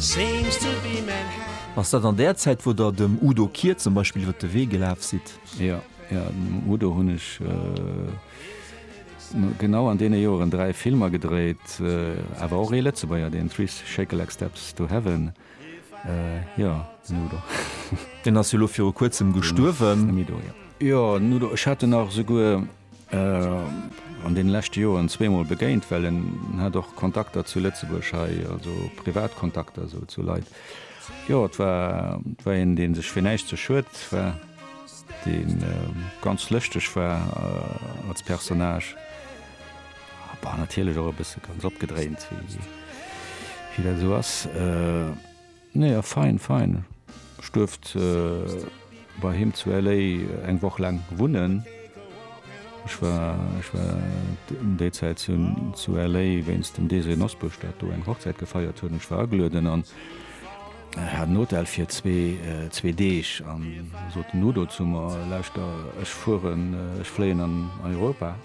Seems to be Manhattan. Ass dat an där Zäit, wou Der dem Udo Kier zum Beispill iwwer de Wee gelaf sidd? Jo, jo, dem Udo hunn ech genau an deene Joren dräi Filmer gedréit, awer och ee Lëtzebuerger, deen Three Shake-a-Lake Steps to Heaven. Jo, den Udo. Deen ass jo elo viru Kuerzem gestuerwen. Jo, den Udo. Ech hat en nach esouguer an den leschte Joeren zweemol begéint, well en hat och Kontakter zu Lëtzebuerg hei, also privat Kontakter sou zu Leit. Jo, et war, et war een, dee sech fir näischt ze schued war, dee ganz lëschteg war als Personnage, awer natierlech och e bësse ganz opgedréint, wéi dat esou ass. Nee a fein fein. Ech duerft bei him zu LA eng Woch laang wunnen. Ech war ech war em déi Zäit zu zu LA wéinst dem Désiré Nosbusch dat do eng Hochzäit gefeiert huet an ech war agelueden an hat en Hotel fir zwee zwee Deeg an sot den Udo zu mer, lauschter ech fueren ech fléien an Europa.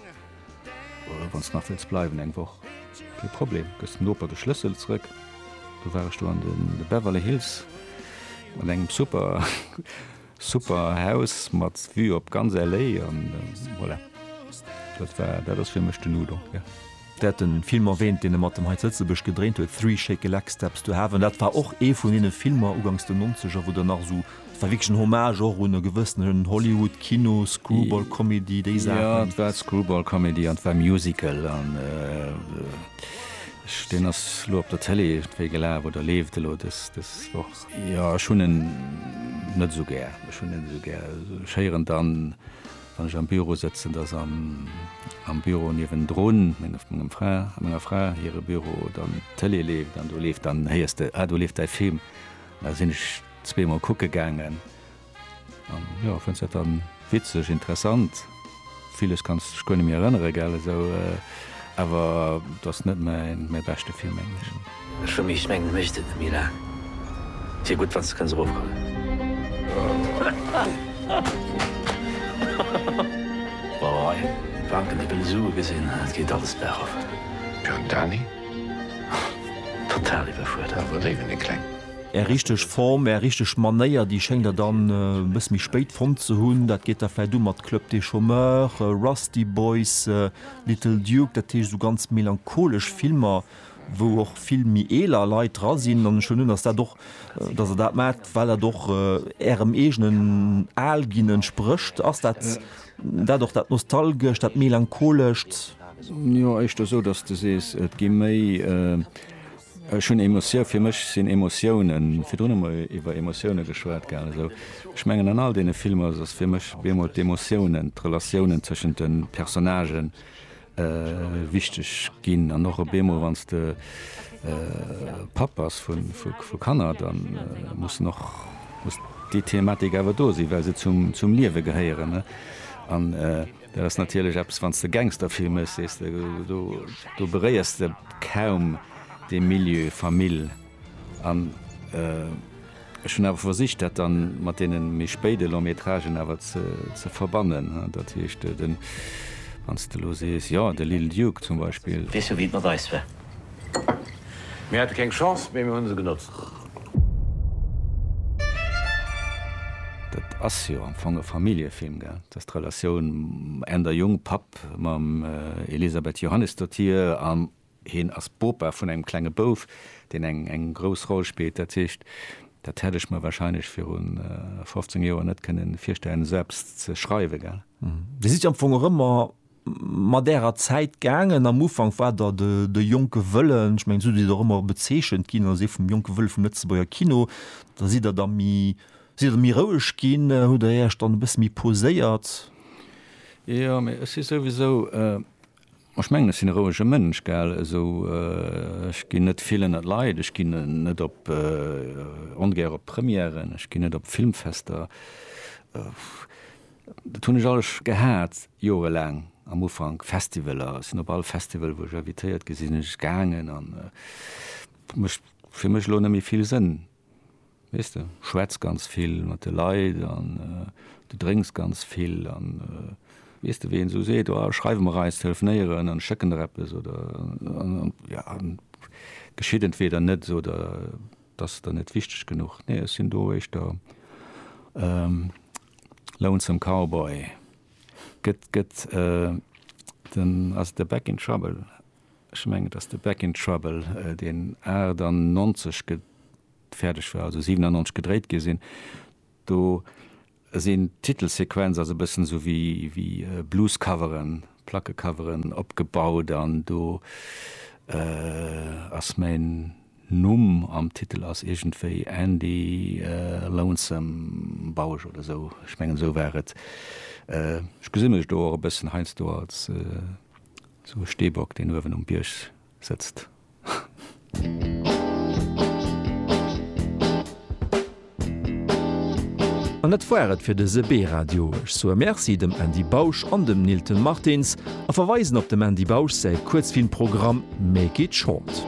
Wann s nach wëlls bleiwen eng Woch, kee Problem, gëss dem Noper de Schlëssel zrëck. Du war ech do an de Beverly Hills an engem super super Haus mat Vue op ganz LA an voilà, dat war dat ass fir mech den Udo, yeah. Dir hat den Film erwähnt, deen e mat dem hei zu Lëtzebuerg gedréint huet, Three Shake-a-Lake Steps to Heaven. Dat war och ee vun deene Filmer ugangs den Nonzeger, wou der nach esou Et war wierklech en Hommage och un e gewëssenen Hollywood-Kino, Screwball-Comedy, déi Saachen. Jo, et war Screwball-Comedy an et war Musical an deen ass elo op der Tëlee iergendwéi gelaf oder leeft elo dës Woch. Jo, ech hunn en net esou gär. Ech hunn en net esou gär. Ech héieren dann, wann ech am Büro sëtzen, dass am Büro niewendrun, menger Fra, menger Fra hire Büro, dann d'Tëlee leeft an do leeft dann, héiers de, ah do leeft däi Film. Da sinn ech. Zweemol kucke gaangen an jo fënns dat dann witzeg, interessant. Villes kanns dech guer net méi erënneren gell esou awer et ass net mäin mäi beschte Film mengen ech. Ech fir mech mengen mécht et net méi laang. Et wier gutt wanns de kënns erofkommen. Boy Banken déi wëlle Sue gesinn et geet alles bergof. Pur Dani? Total iwwerfuerdert. Iwwerdriwwen déi kleng. Är richteg Form, Är richteg Manéier, déi schéngt Der dann e bësse méi spéit fonnt ze hunn. Dat geet da vläicht u mat Club des Chômeurs, Rusty Boys, Little Duke, dat heescht esou ganz melancholesch Filmer, wou och vill méi eeler Leit dra sinn. An ech vermutten, dass dat och, dass Der dat maacht, well dat och Ärem eegenen Al-Ginn entsprécht. Ass dat dat och, dat Nostalgescht, dat Melancholescht? Jo, éischter esou, dass Du sees, et gi méi. Ech hunn Emotioun, fir mech sinn Emotiounen, virdrun hu mer iwwer Emotiounen geschwat gehat esou, ech mengen an all deene Filmer ass ass fir mech bemol d'Emotiounen, d'Relatiounen tëschent de Personnagen wichteg ginn an och e bemol wann s de Papp bass vu vu Kanner, da mussen och muss déi Thematik awer do sinn, well se zum zum Liewe gehéieren ne an. Dat ass natierlech eppes, wann s de Gangsterfilm méchs, sees de, do beréiers de kaum dee Milieu Famill. An ech hunn awer versicht, dat da mat deene méi spéide Long-métragen awer ze verbannen. Dat heescht, wann s de elo sees, jo, de Lil Duke zum Beispill. Weess jo, wéi et mat eis war. Mir hate keng Chance, mee mir hunn se genotzt. Dat ass jo am Fong e Familljefilm, gell? Et ass d'Relatioun ent a Jong, Papp, mam Elisabeth Johannesdottir an hien ass Bopa vun engem klenge Bouf, deen eng eng grouss Roll spillt. Dat heescht, dat hätt ech mer warscheinlech viru 15 Joer net kënnen virstellen, esou eppes ze schreiwen, gell? Dir sidd jo am Fong och ëmmer mat därer Zäit gaangen. Am Ufank war der de jonke Wëllen, ech mengen esou sidd der och ëmmer bezeechent ginn, also ee vum jonke Wëlle vum Lëtzebuerger Kino. Da sidd der da méi, sidd der méi roueg ginn, hutt der Iech dann e bësse méi poséiert? Jo, mee ech si souwisou, ech mengen ech sinn e rouege Mënsch, gell, esou, ech ginn net vill ënnert Leit, ech ginn net op, ongär op Premièren, ech ginn net op Filmfester. Dat hunn ech alles gehat, jorelaang am Ufank. Festivaler, ech sinn op all Festival, wou ech invitéiert gi sinn, sinn ech gaangen an et mécht fir mech elo net méi vill Sënn. Weess de, schwätz ganz vill mat de Leit an du drénks ganz vill an weess de, wéi een esou seet, oh schreiwe mer eis, telefonéieren an ech schécken der eppes oder jo, geschitt entweeder net oder et ass der net wichteg genuch. Nee, ech sinn do éischter Lonesome Cowboy gëtt gëtt den ass et de Back in Trouble? Ech mengen et ass de Back in Trouble deen 98 ge fäerdeg war also 97 gedréit gi sinn. Do sinn d'Titelsequenz ass e bëssen esou wéi wéi Bluescoveren. Plackecoveren opgebaut an do ass mäin Numm am Titel ass iergendwéi Andy Lonesome Bausch oder esou, ech mengen esou war et. Ech gesi mech do och e bëssen heiansdo als esou e Steebock, deen uewen um Bierg. sëtzt. An dat war et fir dëse B-Radio. Ech soe Merci dem Andy Bausch an dem Nilton Martins a verweisen op dem Andy Bausch säi Kuerzfilmprogramm Make it short.